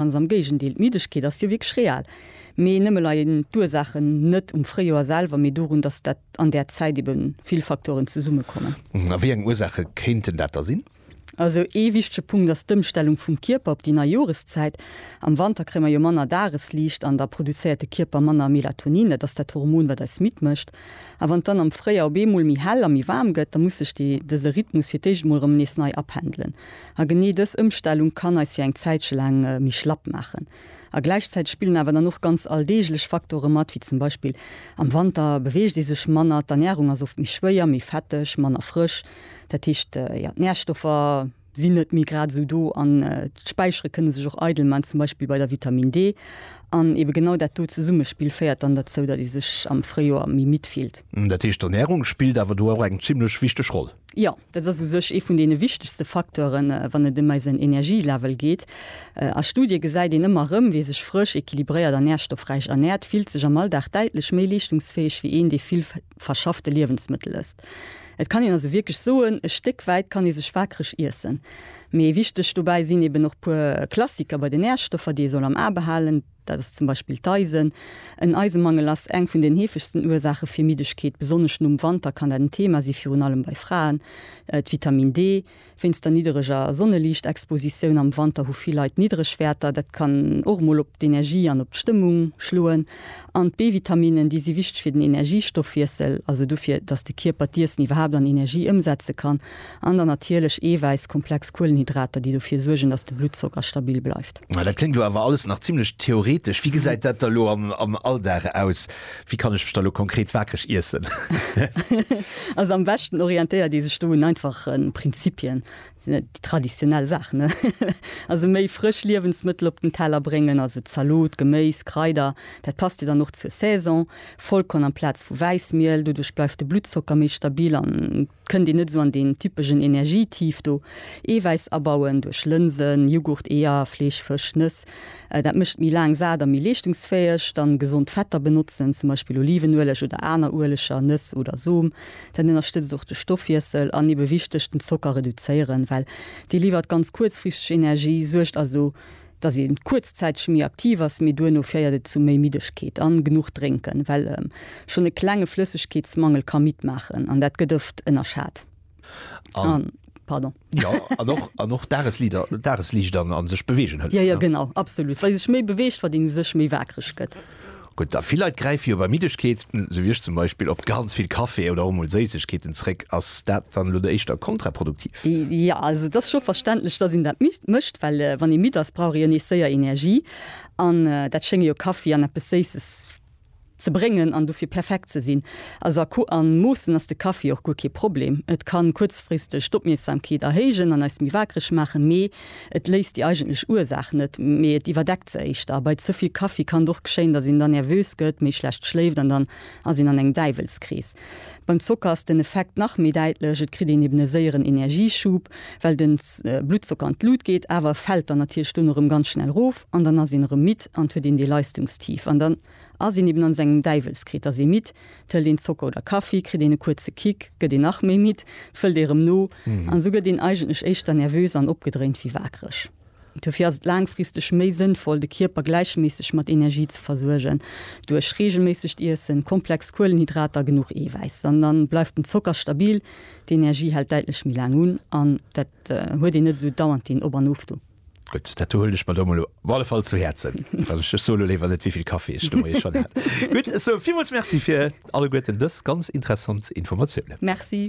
Ganz am Géigendeel, d'Middegkeet ass jo wierklech real. Mee nëmme leien d'Ursaachen net um Fréijoer selwer, mee dorun, datt dat an där Zäit ebe vill Faktoren zesummekommen. A wéi eng Ursaache kéinten dat da sinn? Also ee wichtege Punkt ass d'Ëmstellung vum Kierper op déi nei Joreszäit. Am Wanter kréie mer jo manner Dagesliicht an da produzéiert de Kierper manner Melatonin, dat ass dat Hormon, wat eis midd mécht. A wann et dann am Fréijoer op eemol méi hell a méi waarm gëtt, da muss sech dëse Rhythmus fir d'éischt emol erëm nees nei apendelen. A genee dës Ëmstellung kann eis fir eng Zäitche laang méi schlapp maachen. A gläichzäiteg spillen awer dann och ganz alldeeglech Faktore mat, wéi zum Beispill, am Wanter beweegt ee sech manner, d'Ernärung ass oft méi schwéier, méi fetteg, manner frësch. Dat heescht, jo, d'Närstoffer sinn net méi grad esou do an d'Späichere kënne sech och eidel man, zum Beispill bei der Vitaminn D. An eebe genau dat do Zesummespill féiert dann derzou, datt ee sech am Fréijoer méi midd fillt. Dat heescht, d'Ernärung spillt awer do och eng zimmlech wichteg Roll? Jo, Dat ass u sech ee vun deene wichtegste Facteuren, wann et ëm eisen Energielevel geet. A Studie gesäit een ëmmer erëm, Wie sech frësch, equilibréiert a nährstoffräich ernäert, fillt sech am Alldag däitlech méi leeschtungsfäeg wéi een, dee vill verschaffte Liewensmëttel ësst. Et kann een also wierklech soen, e Stéck wäit kann ee sech waakreg iessen. Mee wichteg dobäi sinn eben och puer Klassiker bei den Nährstoffer, déi ee soll am A behalen. Dat ass zum Beispill d'Eisen. En Eisemangel ass eng vun den heefegsten Ursaache fir Middegkeet. Besonnesch nom Wanter kann dat en Thema si virun allem bei Fraen. D'Vitamin D. Wéinst der niddereger Sonneliichtexpositioun am Wanter hu vill Leit niddreg Wäerter. Dat kann och mol op d'Energie an op d'Stëmmung schloen. An d'B-Vitaminen, déi si wichteg fir den Energiestoffwiessel, also dofir, datt de Kierper d'Iessen iwwerhaapt an Energie ëmsetze kann. An dann natierlech Eewäiss, komplex Kuelenhydrater, déi dofir suergen, datt de Bluttzocker stabil bleift. Ma dat kléngt elo awer alles nach zimlech theoretesch. Wéi gesäit dat da lo am, am Alldag aus? Wéi kann ech mech da lo konkret waakreg iessen? Also am beschten orientéiert ee sech do un einfache Prinzipien, déi traditionell Saach, ne? Also méi frësch Liewensmëttel op den Teller bréngen, also Zalot, Geméis, Kraider, dat passt jo dann och zur Saison. Vollkorn amplaz vu Wäissmiel, doduerch bleift de Bluttzocker méi stabil an et kënnt een net esou an deen typegen Energietief do. Eewäiss abauen duerch Lënsen, Jughurt, Eeër, Fleesch, Fësch, Nëss, dat mécht méi laang sat a méi leeschtungsfäeg. Dann gesond Fetter benotzen, zum Beispill Olivenueleg oder aner Ueleger, Nëss oder Som. Dat ënnerstëtzt och de Stoffwiessel. An ebe wichteg, den Zocker reduzéieren, well dee liwwert ganz kuerzfristeg Energie, suergt also dass een kuerzzäiteg méi aktiv ass, mee duerno féiert et zu méi Middegkeet. An genuch drénken, well schonn e klenge Flëssegkeetsmangel ka midd maachen, an dat gëtt oft ënnerschat. An, pardon. Jo, an och, an och Dageslieder, Dagesliicht an sech beweegen hëlleft. Jo, jo, genau, absolut, well ee sech méi beweegt, wat een u sech méi wakereg gëtt. Gutt, a vill Leit gräife jo bei Middegkeet, sou wéi ech zum Beispill, op ganz vill Café oder och emol Séissegkeeten zréck. Ass dat dann elo éischter kontraproduktiv? Jo, also et ass scho verständlech, datt een dat mécht, well wann ee midd ass, brauch ee jo nees séier Energie. An dat schénge jo Kaffi an eppes Séisses ze bréngen an dofir perfekt ze sinn. Also a Ko a Moossen ass de Kaffi och guer kee Problem. Et ka kuerzfristeg d'Opmierksamkeet erhéijen an eis méi wakereg maachen, mee Et léist déi eigentlech Ursaach net, mee et iwwerdeckt se éischter. Bei ze vill Kaffi kann et och geschéien, datt een da nervös gëtt, méi schlecht schléift an dann ass een an engem Däiwelskrees. Beim Zocker ass den Effekt nach méi däitlech, et kritt een eben e séieren Energieschub, well den Bluttzocker an d'Lut geet, awer e fält dann natierlech dunn erëm ganz schnell erof an dann ass een erëm midd an et huet een dee Leistungstief an dann. ass een eben an sengem Däiwelskritt, ass ee midd, d'hëlt een Zocker oder Kaffi, kritt een e kuerze Kick, gëtt een nach méi midd, d'fëllt ee rëm no, an esou gëtt een eigentlech éischter nervös an opgedréint wéi wakereg. Duerfir ass et laangfristeg méi sënnvoll, de Kierper gläicheméisseg mat Energie ze versuergen, duerch reegelméissegt Iessen, komplex Kuelenhydrater, genuch Eewäiss, an dann bleift den Zocker stabil, d'Energie hält däitlech méi laang un, an dat huet een net esou dauernd deen Op an Of do. Gutt, dat do huelen ech mer do emol op alle Fall zu Häerzen. Ech so elo léiwer net, wéivill Kaffi ech do moies schonn hat. Gutt, esou villmools Merci fir alleguerten dës ganz interessant Informatiounen. Merci.